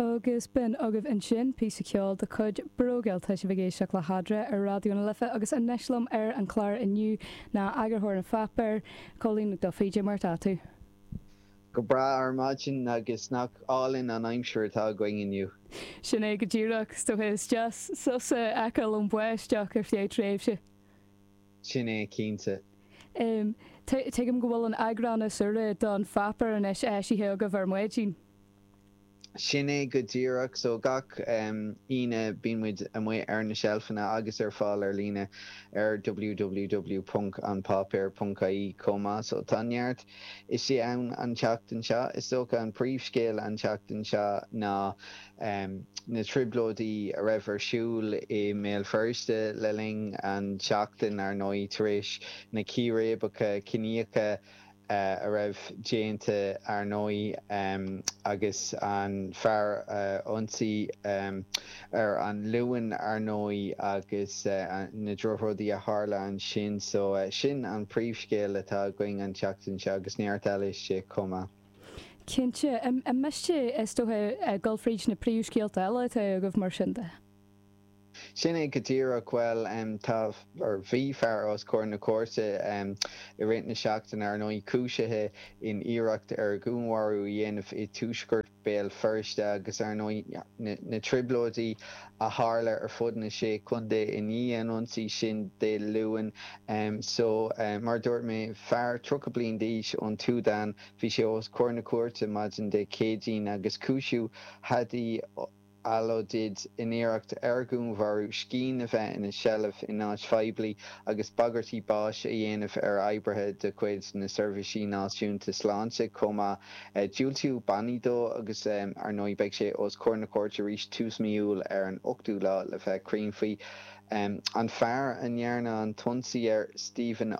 Agus b'in agaibh ansin píosa ceoil de chuid Brógeal! Tá sibh ag éisteacht le hAdre ar Raidió na Life agus anois liom ar an chlár inniu ná eagarthóir an pháipéir, Cóilín Duffy. Dé mar atá tú? Go breá ar maidin agus nach álainn an aimsir atá againn inniu! Sin é go díreach. Is dócha. Is deas sos a fheiceáil ón mbáisteach ar feadh tréimhse. Sin é cinnte. Em, tuigim go bhfuil an eagrán is úire den pháipéar anois eisithe agaibh ar maidin. Sin é go díreach. So gach, em, Aoine bíonn muid amuigh ar na seilfeanna agus ar fáil ar líne ar www ponc an páipéar ponc ie chomh maith. So tá neart istigh ann an tseachtain seo. Is dócha an príomhscéal an tseachtain seo ná. na trioblóidí a raibh ar siúl i mBéal Feirste le linn an tseachtain, ar ndóigh, tar éis na círéibeacha ciníocha a raibh déanta, ar ndóigh, agus an fear a ionsaí ar an Luan, ar ndóigh, agus na drochrudaí a tharla ansin. So, sin an príomhscéal atá againn an tseachtain seo, agus neart eile istigh chomh maith. Cinnte. An miste, is dócha, dul fríd na príomhscéalta eile atá agaibh, mar sin de? Sin é go díreach. Bhuel, tá, nó bhí, fear os comhair na cúirte i rith na seachtaine, ar ndóigh, cúisithe in iarracht ar dhúnmharú a dhéanamh i dtuaisceart Bhéal Feirste agus, ar ndóigh, na trioblóidí. a tharla ar fud na Sé Contae i ndiaidh an ionsaí sin Dé Luain. So, mar a dúirt mé, fear tríocha bliain d'aois ón tSúdáin, bhí sé os comhair na cúirte maidin Dé Céadaoin agus cúisíodh Hadi Alodid in iarracht ar dhúnmharú, scian a bheith ina sheilbh in áit phoiblí agus bagairtí báis a dhéanamh ar oibrithe de chuid na Seirbhísí Náisiúnta Sláinte chomh maith. Diúltaíodh bannaí dó agus, ar ndóigh, beidh sé os comhair na cúirte arís tús mí Iúil ar an ochtú lá le bheith cruinn faoi. An fear a ndearnadh an t-ionsaí air, Stephen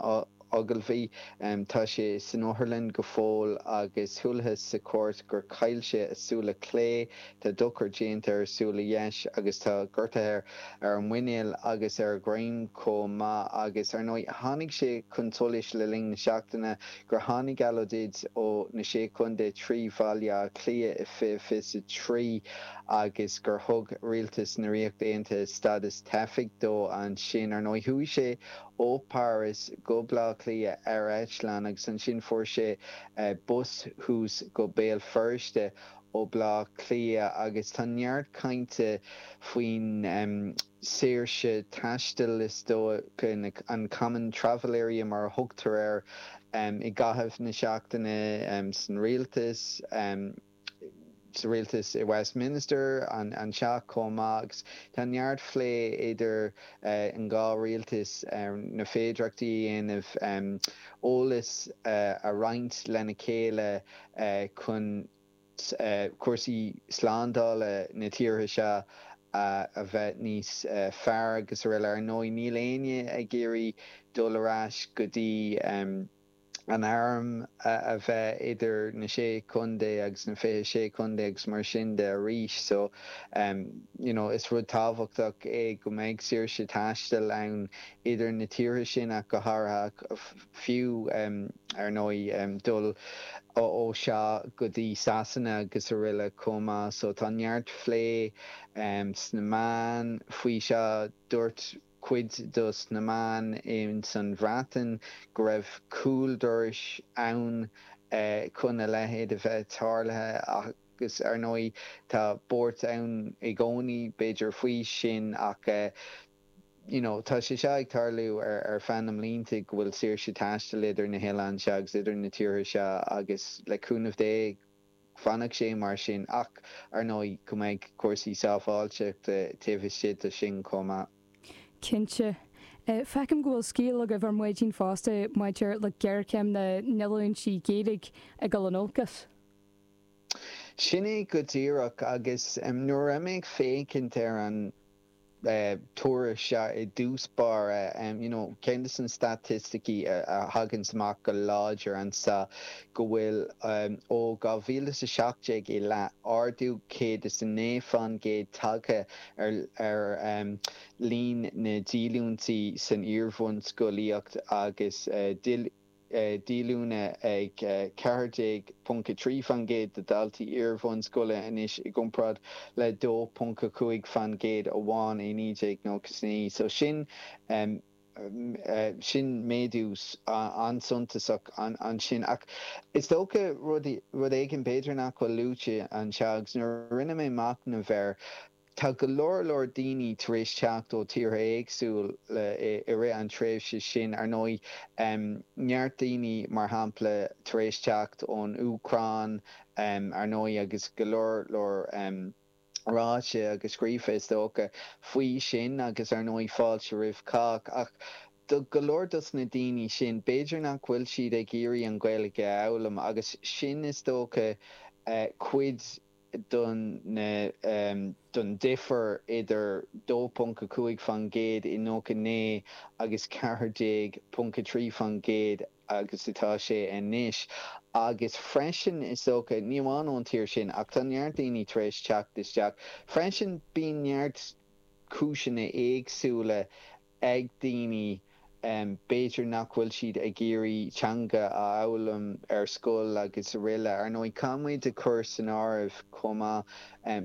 Ogilvie, tá sé san otharlann go fóill agus chualathas sa chúirt gur chaill sé a súile clé, tá dochar déanta ar a súile dheis agus tá gortuithe ar a mhuinéal agus ar a dhroim chomh maith. Agus, ar ndóigh, tháinig sé chun solais le linn na seachtaine gur tháinig Alodid ó na Sé Contae trí Bhaile Átha Cliath i 2023 agus gur thug Rialtas na Ríochta Aontaithe stádas teifigh dó ansin. Ar ndóigh, chuaigh sé ó Páras go Baile Átha Cliath ar eitleán agus ansin fuair sé bus thuas go Béal Feirste ó Baile Átha Cliath agus tá neart cainte faoin saoirse taistil. is dócha, an Common Travel Area mar a thugtar air, i gcaitheamh na seachtaine san rialtas, sa rialtas i Westminster, an teach chomh maith, agus tá neart phlé idir an dhá rialtas ar na féidireachtaí a dhéanamh eolas a roinnt lena chéile chun. cúrsaí slándála na tíortha seo a bheith níos fearr srl. Ar ndóigh, níl éinne ag iarraidh dul ar ais go dtí an airm a bheith idir na sé chontae agus na fiche sé chontae agus mar sin de arís. So, you know, is rud tábhachtach é go mbeidh saoirse taistil ann idir na tíortha sin ach go háirithe. fiú, ar ndóigh, dul ó seo go dtí Sasana agus aroile chomh maith. So tá neart phlé sna meáin faoi seo. Dúirt cuid dos na meáin ins an Bhreatain go raibh cúl dorais ann chun a leithéid a bheith tarlaithe agus ar ndóigh tá buairt ann i gcónaí b'fhéidir faoi sin ach you know, tá sé seo ag tarlú ar, ar feadh na mblianta go bhfuil saoirse taistil idir na hoileáin seo agus idir na tíortha seo agus le cúnamh Dé fanfaidh sé mar sin ach, ar ndóigh, go mbeidh cúrsaí sábháilteachta taobh istigh de sin chomh maith. Cinnte. Feicim go bhfuil scéal agaibh ar maidin fosta maidir le géarchéim na ndíolúintí Gaeilge ag dul in olcas. Sin é go díreach agus nuair a bhí mé ag féachaint ar an. tuairisc seo, i dtosach báire, you know ceann de na staitisticí a thaganns amach go láidir anseo go bhfuil ó 2017 i leith ardú 109 faoin gcéad tagtha ar ar líon na ndíolúintí san iar-bhunscolaíocht agus díolúine ag 14.3 faoin gcéad de dhaltaí iar-bhunscoile anois i gcomparáid le 2.5 faoin gcéad amháin i 1999 so sin sin méadú an-suntasach ansin ach is dócha rud rud éigin b'fhéidir nach bhfuil luaite anseo agus nuair a rinne mé machnamh air Tá go leor leor daoine tar éis teacht ó tíortha éagsúla i rith an tréimhse sin, ar ndóigh, neart daoine, mar shampla, tar éis teacht ón Úcráin, ar ndóigh, agus go leor leor ráite agus scríofa, is dócha, faoi sin, agus, ar ndóigh, fáilte roimh chách. Ach do go leor dos na daoine sin, b'fhéidir nach bhfuil siad ag iarraidh an Ghaeilge a fhoghlaim, agus sin, is dócha, cuid de. don difear idir 2.5 faoin gcéad i 99 agus 14.3 faoin gcéad agus atá sé anois, agus freisin, is dócha, ní amháin ón tír sin, ach tá neart daoine tar éis teacht isteach freisin, bíonn neart cúiseanna éagsúla ag daoine, b'fhéidir nach bhfuil siad ag iarraidh teanga a fhoghlaim ar scoil agus araile. Ar ndóigh, caithfidh muid a chur san áireamh chomh maith,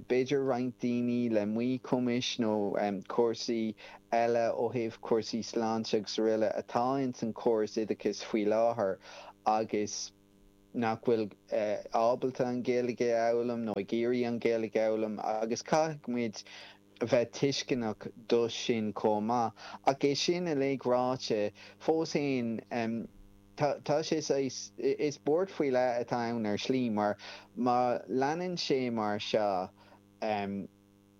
b'fhéidir roinnt daoine le míchumais nó cúrsaí eile ó thaobh cúrsaí sláinte agus araile atá ins an chóras oideachais faoi láthair agus, nach bhfuil ábalta an Ghaeilge a fhoghlaim nó ag iarraidh an Ghaeilge a fhoghlaim agus caithfidh muid a bheith tuisceanach do sin chomh maith. Ach é sin uilig ráite, fós fhéin tá sé saghas, is buairt faoi leith atá ann ar shlí mar má leanann sé mar seo,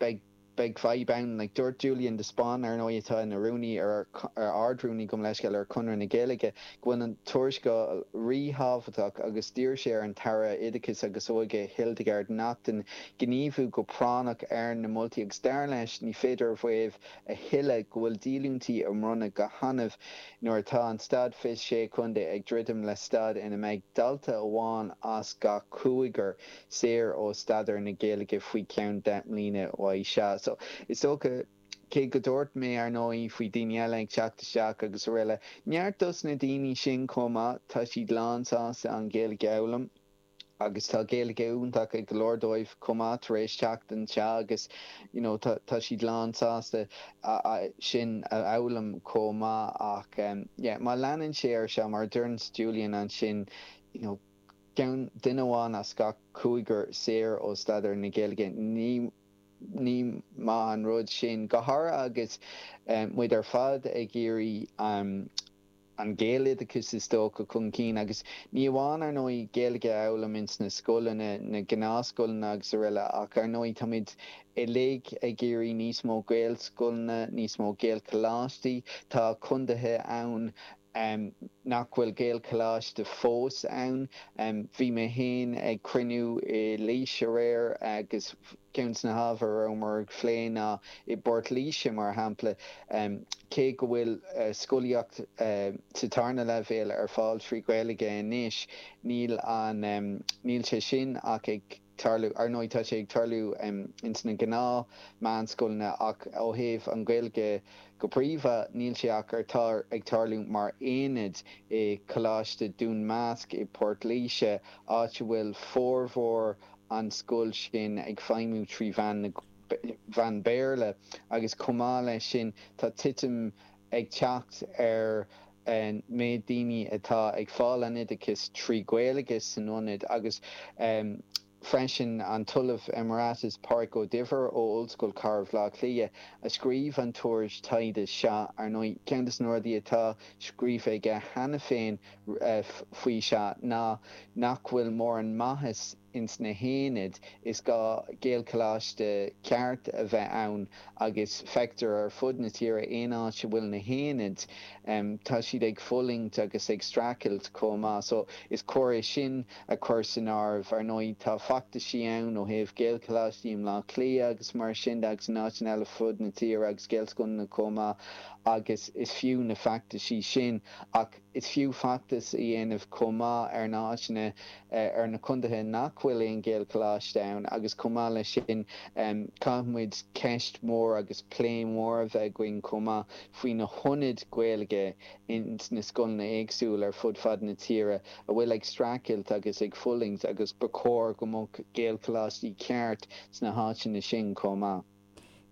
Beidh, beidh fadhb ann. Dúirt Julian de Spáinn, ar ndóigh, atá ina rúnaí ar, ar Ard-Rúnaí, gabh mo leithscéal, ar Chonradh na Gaeilge, go bhfuil an tuarascáil ríthábhachtach agus d'iarr sé ar an tAire Oideachais agus Óige, Hildegarde Naughton, gníomhú go práinneach ar na moltaí agus dar leis, ní féidir a mhaíomh a thuilleadh go bhfuil díolúintí á mbronnadh go hannamh nuair atá an staid i sé chontae ag druidim le staid ina mbeidh dalta amháin as gach cúigear saor ó staidéar na Gaeilge faoi cheann deich mbliana uaidh seo. So, is dócha, cé go dúirt mé, ar ndóigh, faoi daoine eile ag teacht isteach agus araile, neart dos na daoine sin chomh maith, tá siad lán sásta an Ghaeilge a fhoghlaim agus tá Gaeilge iontach ag go leor dóibh chomh maith tar éis teacht anseo agus, you know, tá tá siad lán sásta sin a fhoghlaim chomh maith ach, yeah, má leanann sé ar seo, mar a deireanns Julian ansin, you know, Ceann, duine amháin as gach cúigear saor ó staidéar na Gaeilge. Ní maith an rud sin, go háirithe agus muid ar fad ag iarraidh an Gaeloideachas is dócha chun cinn, agus ní amháin, ar ndóigh, Gaeilge a fhoghlaim ins na scoileanna, na gnáthscoileanna agus araile, ach ar ndóigh táimid uilig ag iarraidh níos mó Gaelscoileanna, níos mó Gaelcholáistí. Tá condaethe ann. em nach bhfuil Gaelcholáiste fós ann. em bhí mé féin ag cruinniú i Laois aréir agus ceann de na hábhair a rabhamar ag plé ná i bPort Laoise mar shampla em cé go bhfuil eh scolaíocht eh sa tarna leibhéal ar fáil trí Ghaeilge anois níl an em níl sé sin ach ag tarlú. Ar ndóigh, tá sé ag tarlú ins na gnáth-meánscoileanna ach ó thaobh an Gaeilge go príomha, níl sé ach ar tar ag tarlú mar aonad i Coláiste Dún Measc i bPort Laoise, áit a bhfuil formhór an scoil sin ag feidhmiú trí mheán na mheán Béarla, agus chomh maith leis sin tá titim ag teacht ar an méid daoine atá ag fáil an oideachais trí Ghaeilge san aonad agus freisin an tOllamh Emeritus Pádraig Ó Duibhir ó Ollscoil Chathair Bhaile Átha Cliath a scríobh an tuairisc taighde seo. Ar ndóigh, ceann de na rudaí atá scríofa aige cheana féin faoi seo ná nach bhfuil mórán maitheas, ins na haonaid, is gá Gaelcholáiste ceart a bheith ann agus feictear ar fud na tíre aon áit a bhfuil na haonaid, tá siad ag fulaingt agus ag streachailt chomh maith. So, is cóir é sin a chur san áireamh. Ar ndóigh, tá feachtaisí ann ó thaobh Gaelcholáistí i mBlá Cliath agus mar sin de agus in áiteanna eile fud na tíre agus Gaelscoileanna chomh maith agus is fiú na feachtaisí sin ach Is fiú feachtas a dhéanamh chomh maith ar na háiteanna ar na condaetha nach bhfuil aon Ghaelcholáiste ann agus chomh maith leis sin caithfimid ceist mhór agus plé mhór a bheith againn chomh maith faoi na haonaid Gaeilge ins na scoileanna éagsúil ar fud fad na tíre a bhfuil ag streachailt agus ag fulaingt agus ba chóir go mbeadh Gaelcholáistí ceart sna háiteanna sin chomh maith.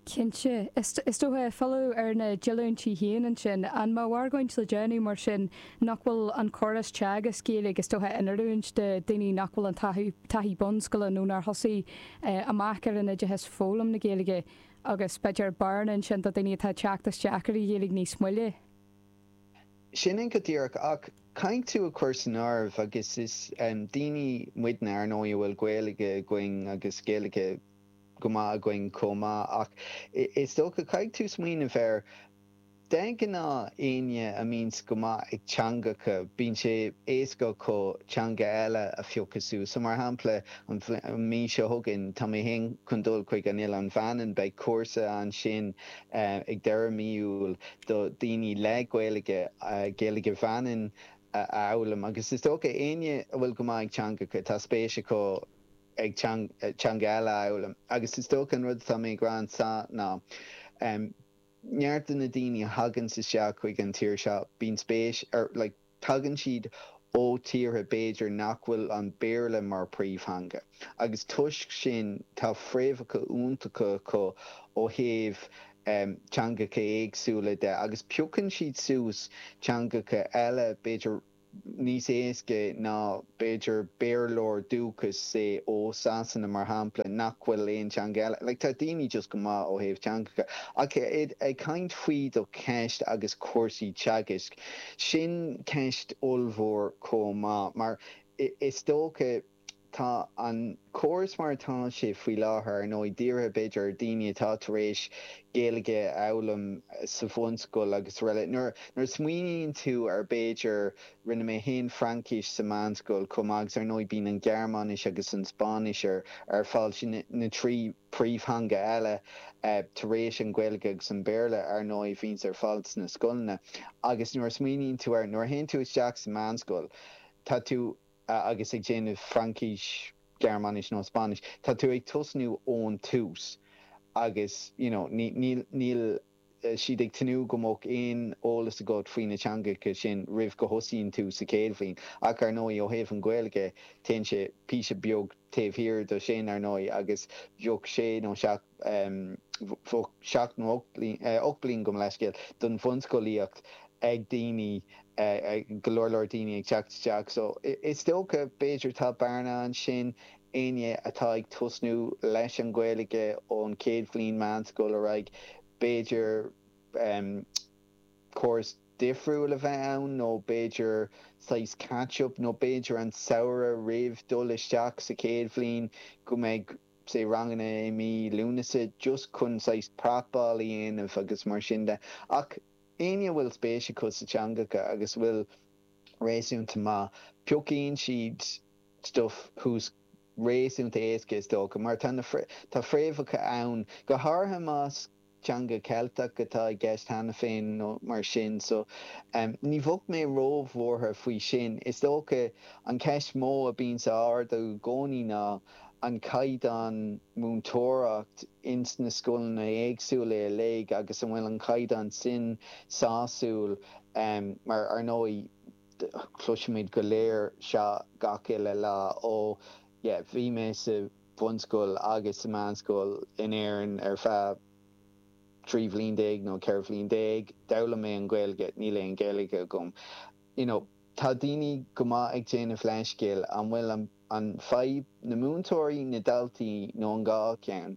Cinnte. Is dócha, filleadh ar na díolúintí féin ansin. An mbeadh argóint le déanamh mar sin nach bhfuil an córas teagasc Gaeilge, is dócha, in oiriúint do daoine nach bhfuil an taithí bunscoile nó nár thosaigh amach ar an oideachas foghlaim na Gaeilge agus b'fhéidir bearna ansin do daoine atá ag teacht isteach ar an Ghaeilge níos moille? Sin é go díreach. Ach caithfidh tú a chur san áireamh, agus is daoine muidne, ar ndóigh, a bhfuil Gaeilge againn agus Gaeilge. go maith againn chomh maith, ach is dócha, caithfidh tú smaoineamh air, de ghnáth éinne a mbíonns go maith ag teangacha, bíonn sé éasca acu teanga eile a phiocadh suas. So mar shampla, an mhí seo chugainn, tá mé féin chun dul chuig an Oileán Mhanann, beidh cúrsa ansin ag deireadh mí Iúil do daoine le Gaeilge, Gaeilge Mhanann a fhoghlaim, agus is dócha, éinne a bhfuil go maith ag teangacha, tá spéis acu. ag teanga eile a fhoghlaim. Agus is dócha an rud atá mé ag rá anseo ná neart de na daoine a thagann isteach chuig an tír seo, bíonn spéis like tagann siad ó tíortha b'fhéidir nach bhfuil an Béarla mar príomhtheanga. Agus toisc sin tá fréamhacha iontacha acu ó thaobh teangacha éagsúla de agus piocann siad suas teangacha eile b'fhéidir, níos éasca ná b'fhéidir Béarlóir dúchais, say, ó Sasana, mar shampla, nach bhfuil aon teanga eile, like, tá daoine just go maith ó thaobh teangacha. Ach ag caint faoi do cheist agus cúrsaí teagaisc, sin ceist ollmhór chomh maith, mar is dócha, Tá an córas mar atá sé faoi láthair, ar ndóigh, dírithe b'fhéidir ar dhaoine atá tar éis Gaeilge a fhoghlaim sa bhunscoil agus araile. Nuair nuair a smaoiníonn tú ar b'fhéidir, rinne mé féin Fraincis sa meánscoil chomh maith agus ar ndóigh bíonn an Ghearmáinis agus an Spáinnis ar fáil, sin na trí príomhtheanga eile tar éis an Ghaeilge agus an Béarla ar ndóigh a bhíonns ar fáil sna scoileanna. Agus nuair a smaoiníonn tú air, nuair a théann tú isteach sa meánscoil, tá tú. a agus ag déanamh Fraincis, Gearmáinis nó Spáinnis, tá tú ag tosnú ón tús agus you know níl níl siad ag tnúth go mbeadh aon eolas agat faoi na teangacha sin roimh go thosaíonn tú sa chéad bhliain ach ar ndóigh ó thaobh an Ghaeilge téann sé píosa beag taobh thiar de sin ar ndóigh agus bheadh sé nó seacht em seacht nó ocht bliain gabh mo leithscéal, don bhunscolaíocht ag daoine, go leor leor daoine ag teacht isteach. So, is dócha, b'fhéidir tá bearna ansin, éinne atá ag tosnú leis an Ghaeilge ón chéad bhliain meánscoile ar aghaidh, b'fhéidir córas difriúil a bheith ann nó b'fhéidir saghas catch-up nó b'fhéidir an samhradh roimh dul isteach sa chéad bhliain go mbeidh, sé ranganna i mí Lúnasa just chun saghas prapáil a dhéanamh agus mar sin de, ach éinne a bhfuil spéis acu sna teangacha agus a bhfuil réasúnta maith, piocfaidh siad stuif suas réasúnta éasca is dócha, mar tá na tá fréamhacha ann, go háirithe más Teanga Cheilteach atá i gceist cheana féin nó mar sin, so ní bheadh mé ró-bhuartha faoi sin. Is dócha an cheist mó a bíonns á ardú i gcónaí ná an caighdeán múinteoireacht ins na scoileanna éagsúla uilig agus an bhfuil an caighdeán sin sásúil mar ar ndóigh cloisimid go léir seo gach uile lá ó bhí mé sa bunscoil agus sa mheánscoil in Éirinn ar feadh 13 bhliain nó 14 bhliain. D'fhoghlaim mé an Ghaeilge, níl aon Ghaeilge agam. You know, tá daoine go maith ag déanamh leithscéil, an bhfuil an fadhb na múinteoirí, na daltaí nó an dhá cheann?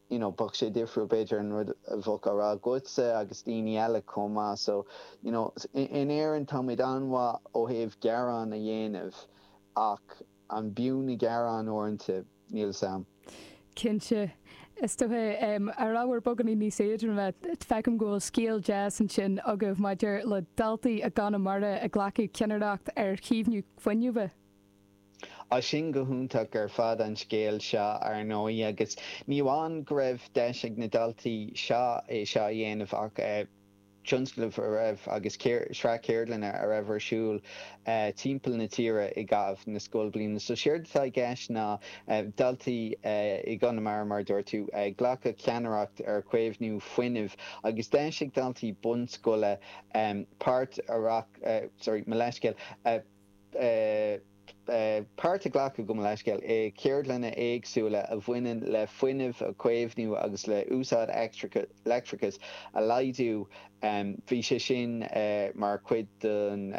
you know bheadh sé difriúil b'fhéidir an rud a bheadh á rá agatsa agus daoine eile chomh maith so you know in Éirinn táimid an-mhaith ó thaobh gearán a dhéanamh ach an b'fhiú na gearáin uaireanta? Níl fhios a'm. Cinnte. Is dócha ar ábhar beagáinín níos éadroime, feicim go bhfuil scéal deas ansin agaibh maidir le daltaí i gConamara a ghlacfaidh ceannaireacht ar chaomhnú fuinnimh. Ó, is ea, go hiontach ar fad an scéal seo, ar ndóigh, agus ní amháin go raibh deis ag na daltaí seo é seo a dhéanamh ach tionscnamh a raibh agus sraith ceardlanna a raibh ar siúl timpeall na tíre i gcaitheamh na scoilbhliana. So séard atá i gceist ná daltaí i gConamara, mar a dúirt tú, ag glacadh ceannaireacht ar chaomhnú fuinnimh agus deis ag daltaí bunscoile páirt a sorry, mo leithscéal, páirt a ghlacadh go mo leithscéal, i ceardlanna éagsúla a bhaineann le fuinneamh a chaomhnú agus le úsáid leictreachais a laghdú bhí sé sin mar chuid den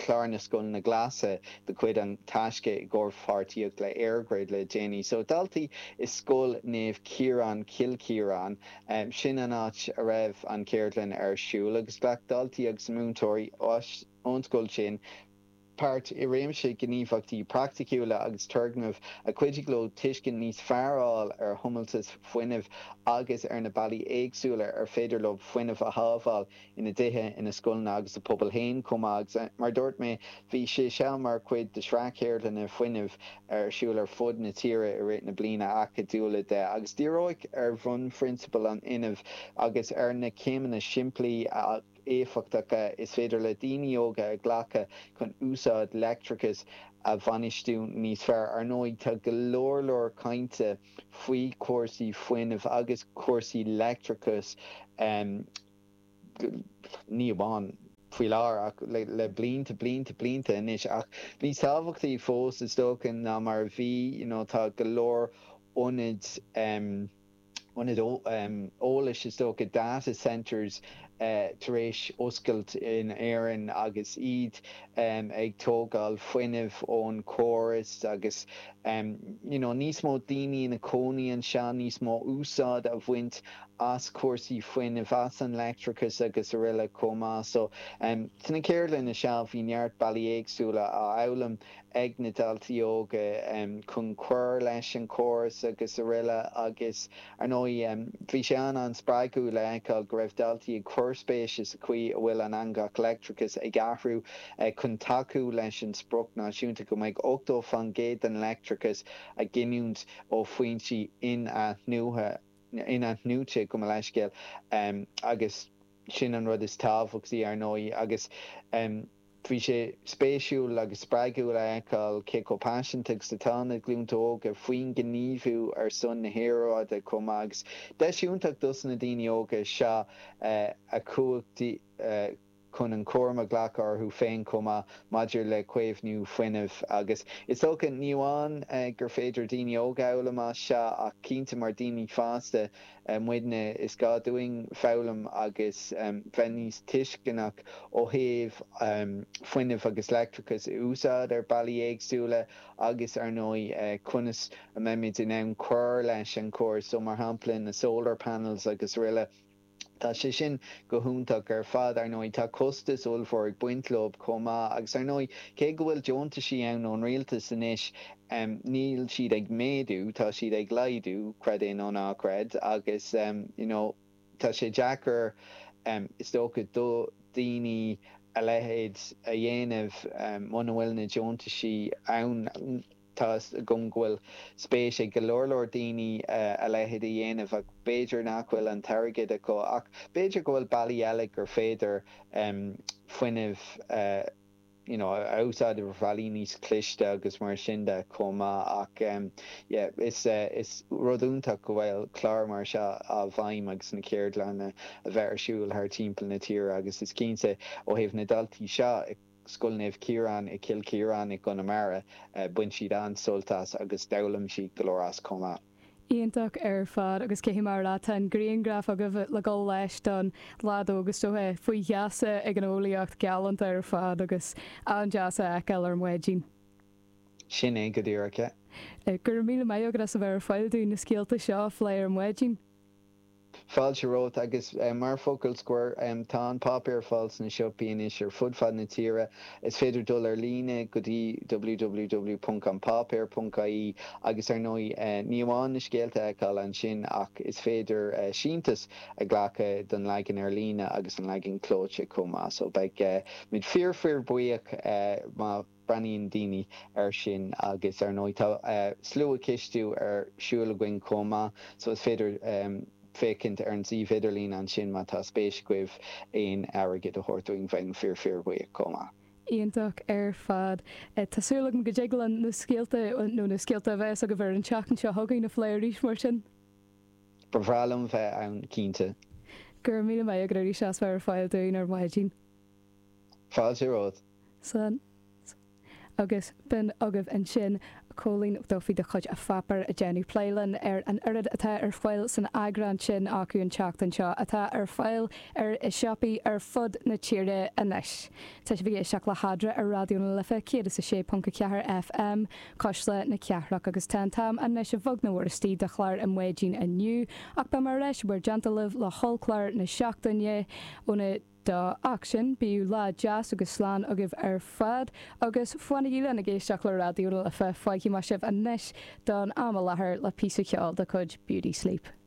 chlár na Scoileanna Glasa de chuid an Taisce i gcomhpháirtíocht le EirGrid le déanaí. So daltaí i Scoil Naomh Ciarán, Cill Chiaráin, sin an áit a raibh an cheardlann ar siúl agus ghlac daltaí agus múinteoirí Ón scoil sin, páirt i réimse gníomhaíochtaí praiticiúla agus turgnaimh a chuidigh leo tuiscint níos fearr a fháil ar thomhaltas fuinnimh agus ar na bealaí éagsúla ar féidir leo fuinneamh a shábháil ina dtithe, ina scoileanna agus a bpobail féin chomh maith. Agus mar a dúirt mé, bhí sé seo mar chuid de shraith ceardlanna fuinnimh ar siúl ar fud na tíre i rith na bliana acadúla seo agus díríodh ar bhunphrionsabail an fhuinnimh agus ar na céimeanna simplí a éifeachtacha is féidir le daoine óga a ghlacadh chun úsáid leictreachais a bhainistiú níos fearr. Ar ndóigh, tá go leor leor cainte faoi chúrsaí fuinnimh agus cúrsaí leictreachais, ní amháin faoi láthair ach le blianta, blianta, blianta anois, ach níos tábhachtaí fós, is dócha, ná mar a bhí, you know, tá go leor ionaid, ionaid eolais, is dócha, data centres, tar éis oscailt in Éirinn agus iad ag tógáil fuinnimh ón chóras agus you know níos mó daoine ina cónaí anseo, níos mó úsáid a bhaint as cúrsaí fuinnimh, as an leictreachas agus aroile chomh maith. So, sna ceardlanna seo bhí neart bealaí éagsúla á fhoghlaim. ag na daltaí óga chun cur leis an chóras agus aroile agus ar ndóigh bhí sé an an spreagúil a fheiceáil go raibh daltaí ag cur spéise sa chaoi a bhfuil an eangach leictreachais ag athrú chun tacú leis an spriocc náisiúnta go mbeidh 80 faoin gcéad den leictreachas á ghiniúint ó fhoinsí inathnuaithe, inathnuaite gabh mo leithscéal agus sin an rud is tábhachtaí ar ndóigh agus. Bhí sé spéisiúil agus spreagúil a fheiceáil cé chomh paiseanta is atá na glúnta óga faoin ngníomhú ar son na haeráide chomh maith agus deis iontach dos na daoine óga seo a chumhachtú chun an cúram a ghlacadh orthu féin chomh maith maidir le caomhnú fuinnimh agus is dócha ní amháin gur féidir daoine óga a fhoghlaim as seo ach cinnte mar daoine fásta muidne, is gá dúinn foghlaim agus bheith níos tuisceanach ó thaobh fuinneamh agus leictreachas a úsáid ar bealaí éagsúla agus, ar ndóigh, conas a mbeimid in ann cur leis an chóras so, mar shampla, na solar panels agus rl. Tá sé sin go hiontach ar fad, ar ndóigh. Tá costas ollmhór ag baint leob chomh maith agus, ar ndóigh, cé go bhfuil deontaisí ann ón rialtas anois, em, níl siad ag méadú, tá siad ag laghdú, creid é nó ná creid, agus em, you know, tá sé deacair, em, is dócha do dhaoine a leithéid a dhéanamh, em, muna bhfuil na deontaisí ann, tá 'fhios agam go bhfuil spéis ag go leor leor daoine eh, a leithéid a dhéanamh ach b'fhéidir nach bhfuil an t-airgead acu ach b'fhéidir go bhfuil bealaí eile gur féidir, em, fuinneamh eh. you know a úsáid ar bhealaí níos cliste agus mar sin de chomh maith ach yeah is is rud iontach go bhfuil clár mar seo i bhfeidhm agus na ceardlanna a bheith ar siúl thart timpeall na tíre agus is cinnte ó thaobh na daltaí seo i Scoil Naomh Ciarán i Cill Chiaráin i gConamara bain siad an-sult as agus d'fhoghlaim siad go leor as chomh maith. Iontach ar fad, agus cé mar atá an grianghraf agaibh le dul leis den leaid óg agus é faoi gheasa ag an eolaíocht, galánta ar fad agus an-deas a fheiceáil ar maidin. Sin é go díreach é. Go raibh míle maith agat as a bheith ar fáil dúinn na scéalta seo a phlé ar maidin. Fáilte romhat, agus mar focal scoir, tá an páipéar ar fáil sna siopaí anois ar fud fad na tíre. Is féidir dul ar líne go dtí www.anpáipéar.ie agus ar ndóigh ní amháin na scéalta a fheiceáil ansin ach is féidir síntiús a ghlacadh don leagan ar líne agus don leagan clóite chomh maith, so beidh muid fíor-fíorbhuíoch má. Breathnaíonn daoine air sin agus ar ndóigh tá sluachistiú ar siúl againn chomh maith so is féidir féachaint ar an suíomh idirlín ansin má tá spéis agaibh aon airgead a thabhairt dúinn. Bheinn fíor fíorbhuíoch chomh maith. Iontach ar fad. Tá súil agam go dtig linn na scéalta, nó na scéalta a bheas agaibh ar an tseachtain seo chugainn a phlé arís mar sin. Ba bhreá liom bheith ann cinnte. Go raibh míle maith agat arís as bheith ar fáil dúinn ar maidin. Fáilte romhat. Agus b'in agaibh ansin Cóilín Duffy de chuid An Páipéar ag déanamh plé linn ar an oiread atá ar fáil san eagrán sin acu an tseachtain seo atá ar fáil i siopaí ar fud na tíre anois. Tá sibh ag éisteacht le hAdmhaidin ar Raidió na Life 106.4 FM, Cuisle na Cathrach, agus tá an t-am anois beagnach istigh do chlár na maidine inniu, ach beidh muid ar ais níos déanaí libh le hollchlár na seachtaine, óna. Go dtí sin, bíodh lá deas agus slán agaibh ar fad, agus fanaigí linn ag éisteacht le Raidió na Life, fágfaidh mé sibh anois don am i láthair le píosa ceoil de chuid Beauty Sleep.